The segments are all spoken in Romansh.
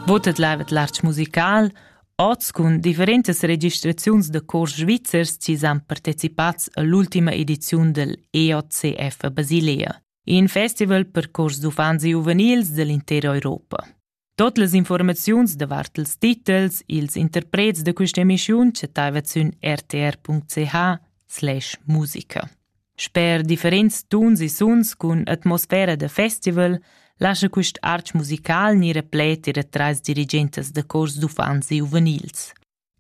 Votet lavet l'arch musical oz cun differentas registraziuns da cors svizzers chi s'han partecipats all'ultima ediziun del EOCF a Basilea, in festival per cors d'uffants e giuvenils dell'intera Europa. Tot las informaziuns davart ils titels, ils interprets da questa emissiun chattaivat sün rtr.ch slash musica. Sper differents tuns e suns cun atmosfera da festival lascha quist arch musical gnir replet ir atras dirigentas da cors d'uffants e giuvenils.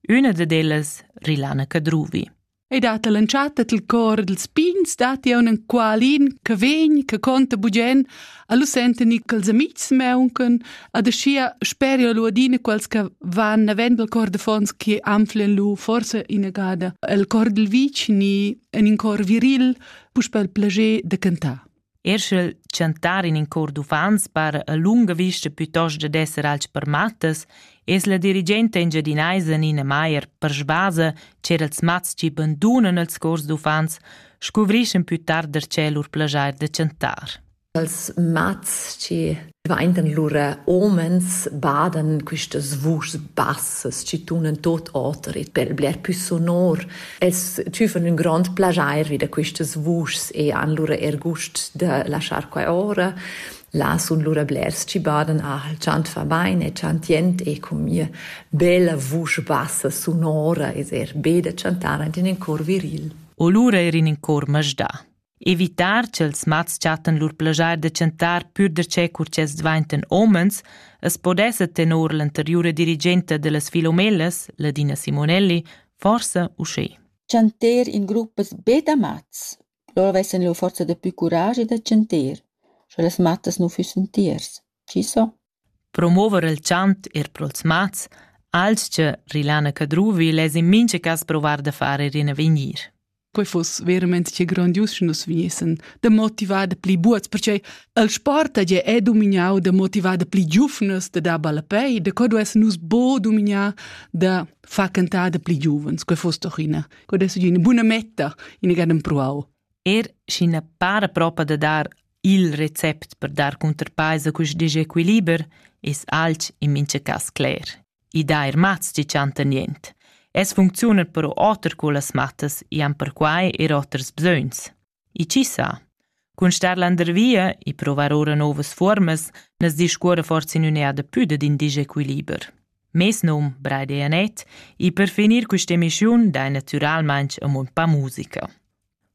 Üna dad ellas, Rilana Cadruvi. E dat all'entschatta dal cor dals pigns datti un enqualin che vegn, che conta bugen, Allo senten i quels amics meuncan, ad aschia speria lu adina quels che van navend al cor de fons che anflen lu forse inagada el cor dil vicini en in cor viril, puspel plager de cantar. Erschel chantar in in cor d'uffants par a lunga vista piuttosto da esser alch per mattas, es la dirigente engiadinaisa Nina Maier per svasa cer els mats chi bandunan els cors d'uffants scuvriss ün pü tard darcheu lur plaschair da chantar. Als mats che vaindan lura omens badan quistas vuschs bassas chi tunan tot oter e per bler pü sonor. Els tüfan ün grand plagiair vi da quistas vuschs e han lura er gust da laschar qua ora. Là sun lura blers chi badan, ah, il chant fa bain, è chantient e con mia bella vusch bassa sonora es er be da chantar ant in cor viril. O lura er in in cor masdà. Evitar ch'els mats chattan lur plagiar da chantar pür darcheu cur ch'els dvaintan homens, as podessa tenor l'anteriura dirigenta da las Filomellas, Ladina Simonelli, forsa uschè. Chanter in gruppas be da mats. Loro vessan lur forza da pü curagi da chanter, sche las mattas nu füssen tiers. Chi so? Promover il chant eir pro'ls mats, alch Rilana Cadruvi less in mincha cas provar da far eir in avegnir. Quei fuss verament che grandius sche nus vegnessan da motivar da pli buots, perche il sport hagi è domignau da motivar da pli giuvnas da dar ballapei, da co duess nus bo domignar da far cantar da pli giuvens. Quei fuss doch ina, quei dess ina buna metta, ina gaden pruau. Er sch'ina para propa da dar Il recept per dar cunterpaisa cust disequiliber es alch in mincha cas cler. I dà eir mats chi chantan niente. Es funcziuna però oter cullas mattas e han perquai er oters bsögns. E chi sa? Cun star landervia e provar ora novas formas nas discuora forse in un'eada più d'in disequiliber. Mes num, Breide Janet, e per finir questa emissiun dai naturalmente a mon pa musica.